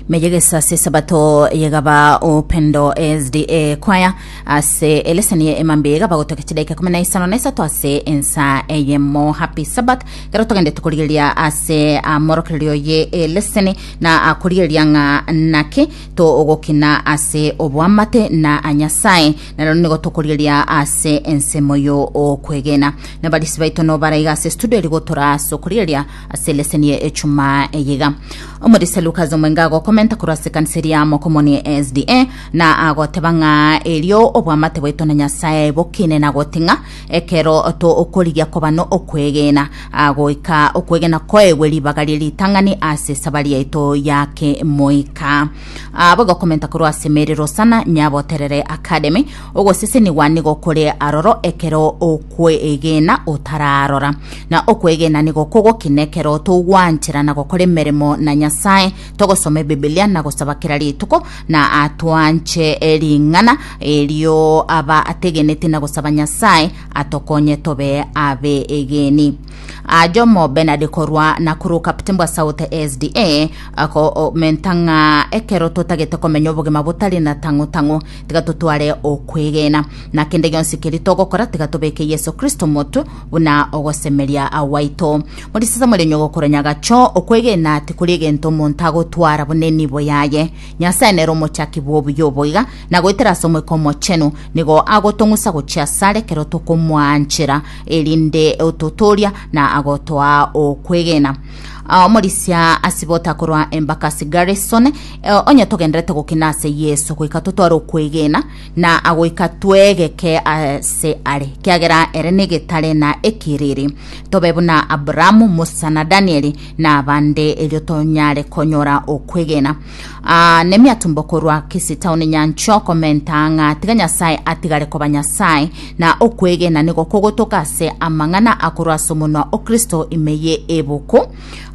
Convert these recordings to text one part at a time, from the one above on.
Meja gesase sabato yegaba upendo SDA kwaya ase eleseni ye emambe yegaba gotoka chidaika kumi na isano na isato ase ensa eyemo happy sabbath kero togende tukorigeria ase amorokererio ye eleseni na akorigeria ng'a naki togokina ase obwamate na anyasaye naro nigo tokorigeria ase ensemo yo okwegena nabarisi baito no baraiga ase studio rigotora ase okorigeria Ase leseni ya echumaa eye iga, omorisia Lucas omwenge agokomenta korwa ase ekanisa eria ya Mokomoni SDA, na agoteba ng'a erio obwamate bwaito na Nyasae bokine na goti ng'a ekero tokorigia koba n'okwegena goika, okwegena koegwe ribaga rie ritang'ani ase esabari yaito ya kemoika. Abo igokomenta korwa ase emerero sana, Nyaboterere Academy, ogosesenigwa nigo kore aroro ekero o kwegena otararora. Na okwegena nigo kogokina ekero togwanchera na gokora emeremo na Nyasae, togosoma Ebibilia na gosaba kera rituko, na ah, twanche eh, ring'ana erio aba ategeneti na gosaba Nyasae atokonye tobe abeegeni. Ah, Jomo Bernard korwa Nakuru Kaptini bwa South SDA akomentang'a ekero totagete komenya obogima botari na tang'u tang'u tiga totware okwegena, na kende gionsi keria togokora tiga tobeke Yeso Kristo omotwe, buna ogosemeria gwaito. Morisase mori onye gokoranyaga gacho, okwegena tikori egento omonto agotwara buna enibo yaye. Nyasae nere omochaki bw'obuya obo iga, na goetera ase Omoika Omochenu, nigo agotong'usa gochia asare ekero tokomwanchera, erinde ototooria na agotoa okwegena. Ah, omorisia asibota korwa embakasi garrison eh, onye togenderete gokina ase yesu goika totware okwegena na agoika twegeke ase are kiagera ere negetare na ekiriri tobe buna abrahamu musa na danieli na abande erio tonyare konyora okwegena Aa, nemiatumbo korwa gese taoni nyancha okomenta ng'a tiga Nyasae atigare koba Nyasae, na okwegena nigo kogotoka ase amang'ana akorwa ase omonwa o Kristo ime ye ebuku.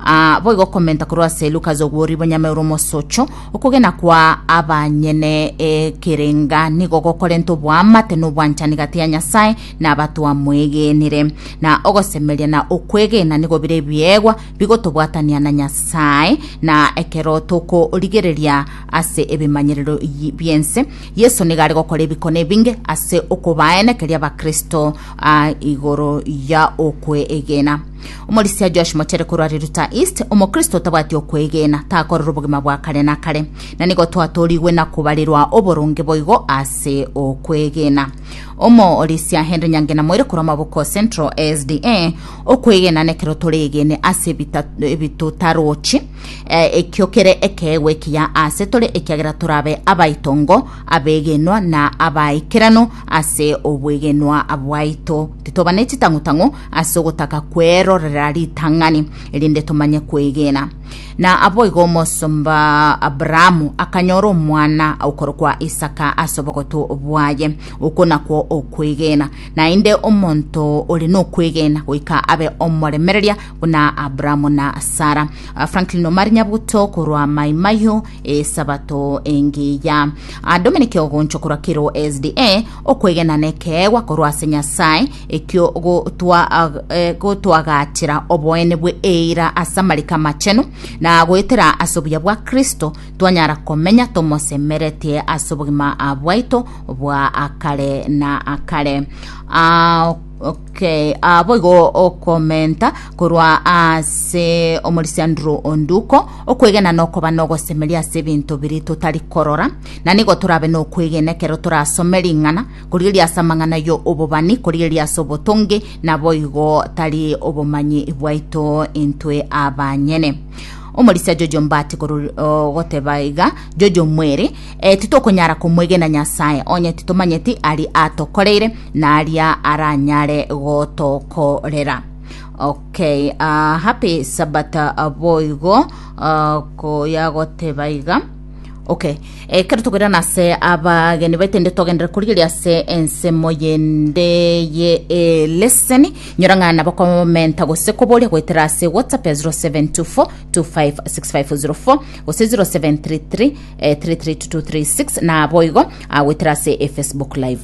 Aa, boigo okomenta korwa ase Lucas ogwori bonyame ore omosocho, okogena kwa abanyene ekerenga nigo gokorenta oboamate na obwanchani gati ya Nyasae na abatwamwegenire, na ogosemeria na okwegena nigo bire ebiegwa bigotobwatania na Nyasae, na ekero tokorigereria ase ebimanyerero yi- bi'ense, Yeso nigo are gokora ebikone ebinge ase okobaenekeria Abakristo a igoro ya okwegena. Omorisia Josh Mochere korwa Riruta East, Omokristo otabwati okwegena takorera obogima bwa kare na kare, na nigo twatorigwe na kobarerwa oboronge boigo ase okwegena. Omooresia Henry Nyangena moire korwa Maboko Central SDA, Okwegena nekero toregene ase ebita- ebitotarochi, eh, ekio kere ekeegwa ekiya ase tore ekiagera torabe abaitongo, abegenwa na abaikeranu ase obwegenwa bwaito. Titoba ne chitang'u-tang'u ase ogotaka kwerorera ritang'ani, erinde tomanye kwegena. Na aboigo omosomba Abrahamu akanyora omwana okorokwa Isaka ase obogotu bwaye. Okwo nakwo okwegena. Naende omonto ore nokwegena goika abe omoremereria buna Abrahamu na Sara. Ah, Franklin Omari Nyabuto korwa Mai Mahiu esabato engiya. Ah, Dominic Ogoncho korwa Kiro SDA okwegena nekeegwa korwa ase Nyasae ekio gotwagaachera oboene bwe eira ase amariko amachenu, na goetera ase obuya bwa Kristo twanyara komenya tomosemeretie ase obogima bwaito bwa akare na akare. Ah, okay. Ah, boigo okomenta korwa ase omorisianduro onduko okwegena nokoba nogosemeria ase ebinto biri totari korora na nigo torabe nokwegena ekero torasome ring'ana korigereria ase amang'ana yo obobani, korigereria ase obotonge, naboigo tari obomanyi bwaito intwe abanyene. Omorisia Jojo Mbati korori- o, goteba iga, Jojo mwere, eh, titokonyara komwegena Nyasae, onye titomanyeti ari atokoreire na aria aranyare gotokorera. Okay, ah, happy Sabbath ah, boigo ah, koya goteba iga. Okay. Ekero togoirana ase abageni baito inde togendere korigeria ase ensemo yende ye eh, leseni nyora ng'a nabo komenta gose koboria goetera ase whatsapp ya 0724 256504 gose 0733 eh, 332236 nabo igo ah, goetera ase efacebook live